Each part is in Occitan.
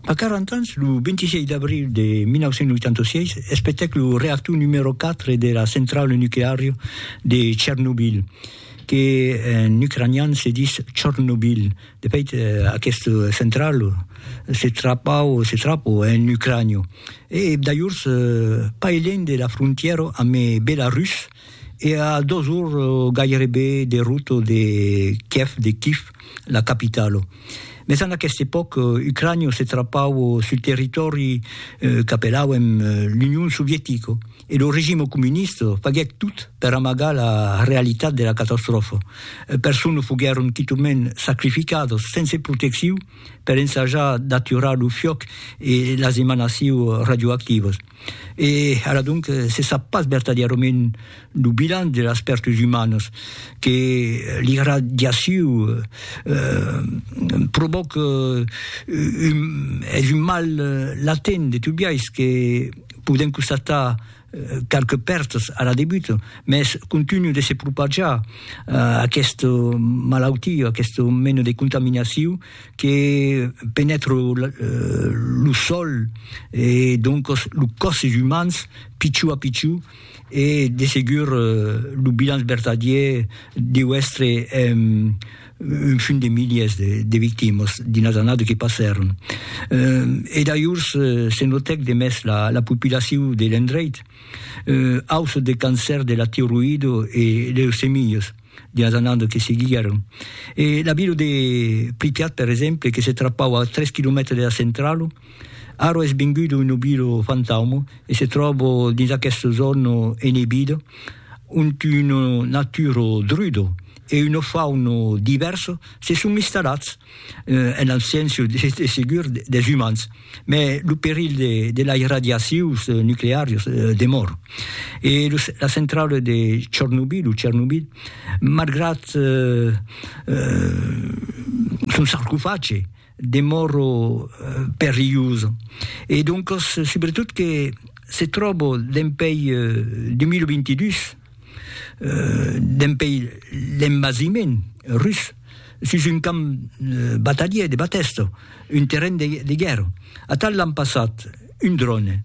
A 40 ans, lo 26 d'abril de 1986, espetèc lo reactor numèro 4 de la centrala nucleària de Chernobyl, que en ucranian se ditz Chornobyl. De fait, aquesta centrala se trapau, se trapo, en Ucrània, e dajors pas elènh de la frontièra amb Belarus. E a dos ors gairebe de rota de Kièv, de Kif, la capitala. Mès en aquesta epòca, Ucrània se trapava sul territòri qu'apelàuem l'Union Sovietica e lo regime comunista faguèt tot per amagar la realitat de la catastròfa. Personas foguèron quitament sacrificadas sense proteccion per ensajar d'aturar lo fiòc e las emanacions radioactivas. E ara donc se sap pas vertadièrament lo bilan de las pèrtas umanas que l'irradiaciu provòca, es un mal latent de tot biais que podèm constatar qualques pèrtas ara debuta, mès continua de se propajar aquesta malautia, aquesta mena de contaminaciu, que penètre lo sòl e doncos los còsses umans pichon a pichon e de segur lo bilanç vertadièr deu èstre un fum de milièrs de victimas dins las annadas que passèron. E dajors se notèc de mès la populacion de l'endreit, auçò de cancèrs de la tiroïda e leucemias. Dias anant que seguiguèron. E la vila de Pripyat, per exemple, que se trapau a tres quilomètres dera centralo, ara es venguda una vila fantauma e se tròba dins aquesta zòna enebida, ont una natura druda e una fauna divèrsa se son instalats. en abséncia de segur des umans, mai lo perilh de las radiacions nucleàrias demòra. E la centrala de Chornobyl, o Chernobyl, malgrat son sarcofage, demòra perilhosa, e doncas subretot que se tròba dempèi 2022, Dempèi l'envasiment rus, sus un camp batalhier de Batèsto, un terren de guèrra, atal l'an passat un dròne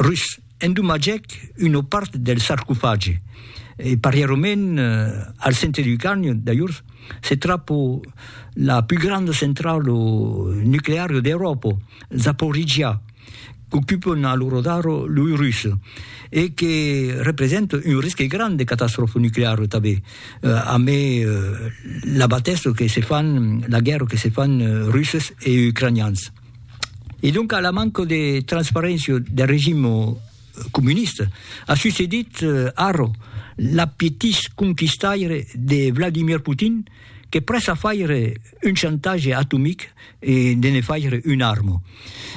rus endomatgèc una part del sarcofagi e parièrament al centre du carni dajors se trapa la pus granda centrala nucleara d'Euròpa, Zaporizhia. qu'ocupon a lo radar loi rus e que represente un risque grand de catastròfa nucleara tanben, amé la batèssa que se fan, la guèrra que se fan russes e ucranians. E doncas la manca de transparéncia del regim comunista a succedit ara l'apetís conquistaire de Vladimir Putin que prèssa faire, un chantatge atomic e de ne faire una arma.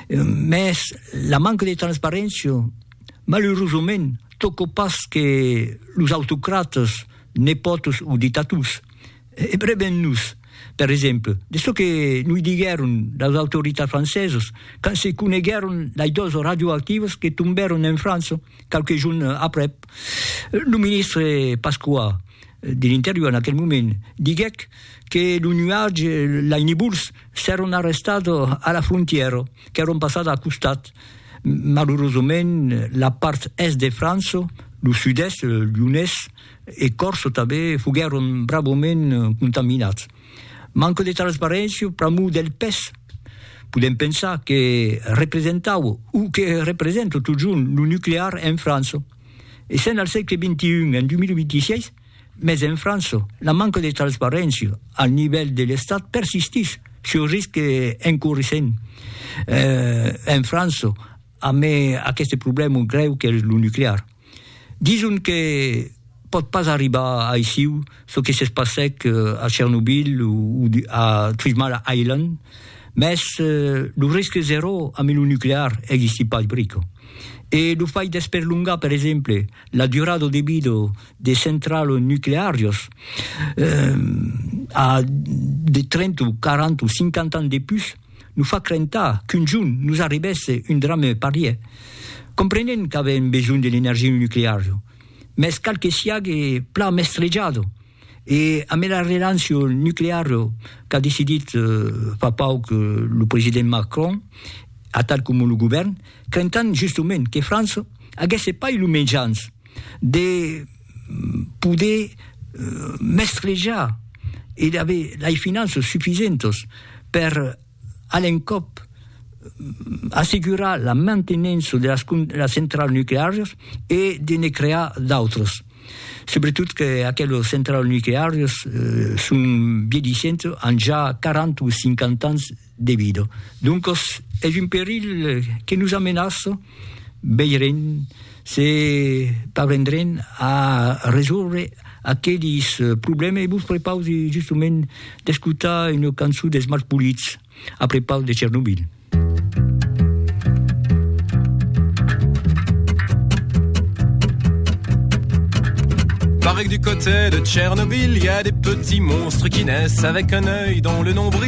Mès la manca de transparéncia, malurosament, tòca pas que los autocratas, nepòtos o dictators. E breben nos, per exemple, de çò que noi diguèron las autoritats francesas quand se coneguèron las doas radioactivas que tombèron en França, qualques jorn aprèp, lo ministre Pasqua de l'Interior en aquel moment diguèc que lo nuatge, lai nibols, s'èron arrestat a la frontièra, qu'èron passat a costat. Malurosament, la part èst de França, lo sud-èst, Lyonés e Còrsa tanben, foguèron bravament contaminats. Manque de transparéncia pr'amor del pes. Podem pensar que representaue, o que representa totjorn lo nuclear en França. E sèn al sègle XXI, en 2026, mès en França la manca de transparéncia al nivèl de l'Estat persistís, çò risque en corrissent en França, Amé aqueste problèma grèu qu'es lo nuclear. Dison que pòt pas arribar aissiu çò que s'es passèc a Chernobyl o a Three Mile Island, mès lo risque zeró amé lo nuclear existí pas brica. E lo fait d'esperlongar, per exemple, la durada de vida de centrals nucleàrias a de 30 o 40 o 50 ans de pus, Nos fa crentar qu'un jorn nos arribèsse un drame parièr. Comprenèm qu'avèm besonh de l'energia nucleara, mès cal que siague plan mestrejada e ambe la relancia nucleara qu'a decidit fa pauc lo president Macron, atal coma lo govèrn, crentant justement que França aguèsse pas lo mejans de. poder mestrejar e d'aver lei finanças sufisentas per a l'encòp assegurar la mantenença de las las centralas nucleàrias e de ne crear d'autras. Subretot que aquelas centralas nucleàrias son viedisentas, an ja 40 o 50 ans. de vida. Doncas es un perilh que nos amenaça, veirem se parvendrem a resòrver aquelis problèmes e vos prepausi justament d'escotar una cançon dels Malpolits a prepaus de Chernobyl. Pareil du côté de Chernobyl, il y a des petits monstres qui naissent avec un œil dans le nombril.